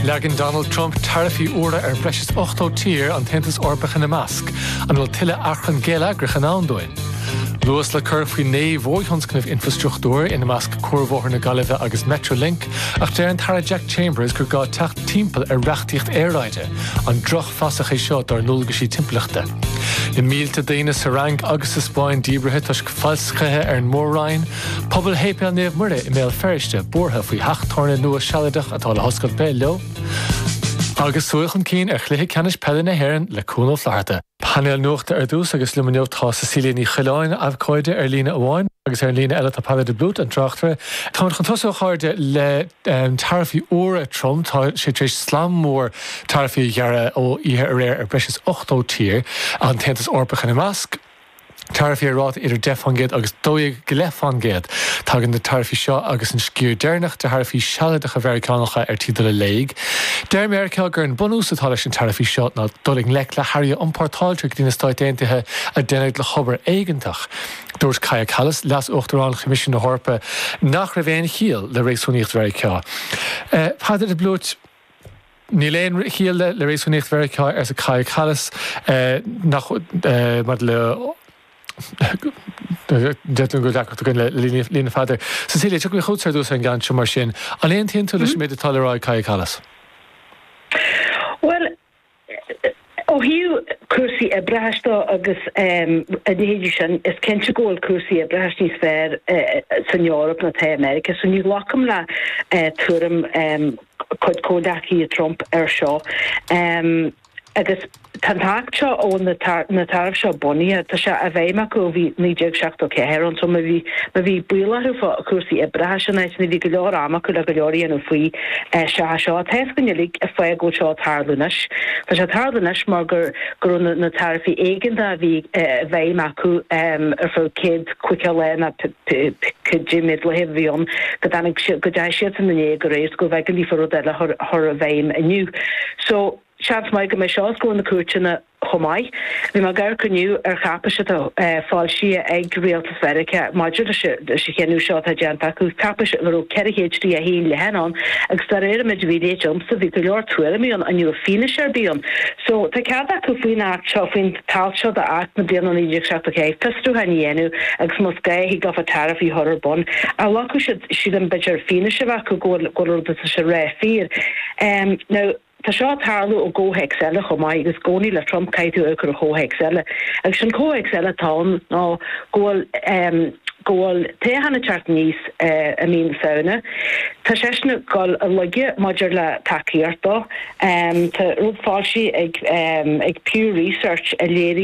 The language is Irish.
Leagann Donald Trump taraifí úra ar bhreis is 80 tír, an tAontas Eorpach ina measc, an bhfuil tuilleadh achrann geilleagrach i ndán dúinn? Luas le cur faoi naoi mhórthionscnamh infrastruchtúir ina measc cuarbhóthar na Gaillimhe agus Metrolink, ach deir an tAire Jack Chambers gur gá teacht timpeall ar reachtaíocht aeráide, an drochfhasach é seo dár ndualgaisí timpeallachta? Na mílte daoine sa Fhrainc agus sa Spáinn díbrithe toisc falscaithe ar an Mór-Roinn, Pobal Shéipéal Naomh Muire i mBéal Feirste buartha faoi theach tábhairne nua sealadach atá le hoscailt taobh leo agus súil chun cinn ar chluiche ceannais peile na hÉireann le Cuan Ó Flatharta. Painéal nuachta ar dtús agus liom inniu tá Cecilia Ní Choileáin, abhcóide, ar líne amháin, agus ar an líne eile tá Peadar de Blúit, an tráchtaire. Táimid chun tosú, a chairde, le taraifí úra Trump. Tá sé tar éis slam mór taraifí a ghearradh ó oíche aréir ar bhreis is 80 tír, an tAontas Eorpach ina measc. taraifí ar ráta idir deich fán gcéad agus dó dhéag go leith fán gcéad. Tagann na taraifí seo agus an sciar deireanach de tharaifí sealadacha Mheiriceánacha ar tí dul i léig. Deir Meiriceá gur an bunús atá leis na taraifí seo ná dul i ngleic le hearraí a iompórtáiltear go dtí na Stáit Aontaithe a deineadh le hobair éigeantach. Dúirt Kaja Kallas, Leas-Uachtarán Choimisiún na hEorpa, nach raibh aon chiall le réasúnaíocht Mheiriceá. Níl aon chiall le réasúnaíocht Mheiriceá, arsa Kaja Kallas, nach maidir le deirtear go bhfuil deacracht againn le líne Pheadair. Cecilia, tiocfaidh mé chugat ar dtús ar an gceann seo mar sin. An aontaíonn tú leis an méid atá le rá ag Kaja Kallas? Bhuel, Ó thaobh cúrsaí oibreachais dó agus a leithéidí sin, is cinnte go bhfuil cúrsaí oibreachais níos fearr san Eoraip ná tá i Meiriceá, so ní ghlacfainn le tuairim chuid comhleacaithe Trump air seo. Agus tá an tAcht seo a bhfuil na taraif seo bunaithe, tá sé i bhfeidhm acu ó bhí 1974 ann, so má bhí buaireamh orthu fá chúrsaí oibreachais in áiteanna, bhí go leor ama acu le go leor a dhéanamh faoi. Sea, seo tá a fhios againn uilig an fáth go bhfuil seo ag tarlú anois. Tá sé ag tarlú anois mar go raibh na taraifí éigeanta a bhí i bhfeidhm acu ar feadh céad caoga lá nó cibé méid laethe a bhí ann go dtáinig siad, go dteachaigh siadsan in éag aréir so gurbh éigean daofa rud eile a chur i bhfeidhm inniu. So, seans maith go mbeidh seo os comhair na cúirteanna. Chomh maith, bhí mé ag amharc inniu ar cháipéis atá foilsithe ag Rialtas Mheiriceá maidir leis an chinneadh seo atá déanta acu, cáipéis a raibh 431 leathanach ann agus de réir an méid a bhí léite agamsa, bhí go leor tuairimí ann ní raibh fianaise ar bith ann. So, tá cead acu faoin Acht seo, faoin t-alt seo d'Acht na bliana 1974 fiosrúcháin a dhéanamh agus más gá, thig leofa taraifí a chur ar bun. Ach ghlacfadh siad, sílim, b'fhéidir fianaise a bheith acu go bhfuil an rud atá siad ag ráit fíor. Now, Tá seo ag tarlú i gcomhthéacs eile chomh maith, agus i gcónaí le Trump caithfidh tú a chur i gcomhthéacs eile, agus an comhthéacs eile atá ann ná go bhfuil, go bhfuil toghchán ag teacht aníos i mí na Samhna. Tá seisean ag dul i laige maidir le tacaíocht dó. Tá rud foilsithe ag, ag Pew Research a léiríonn.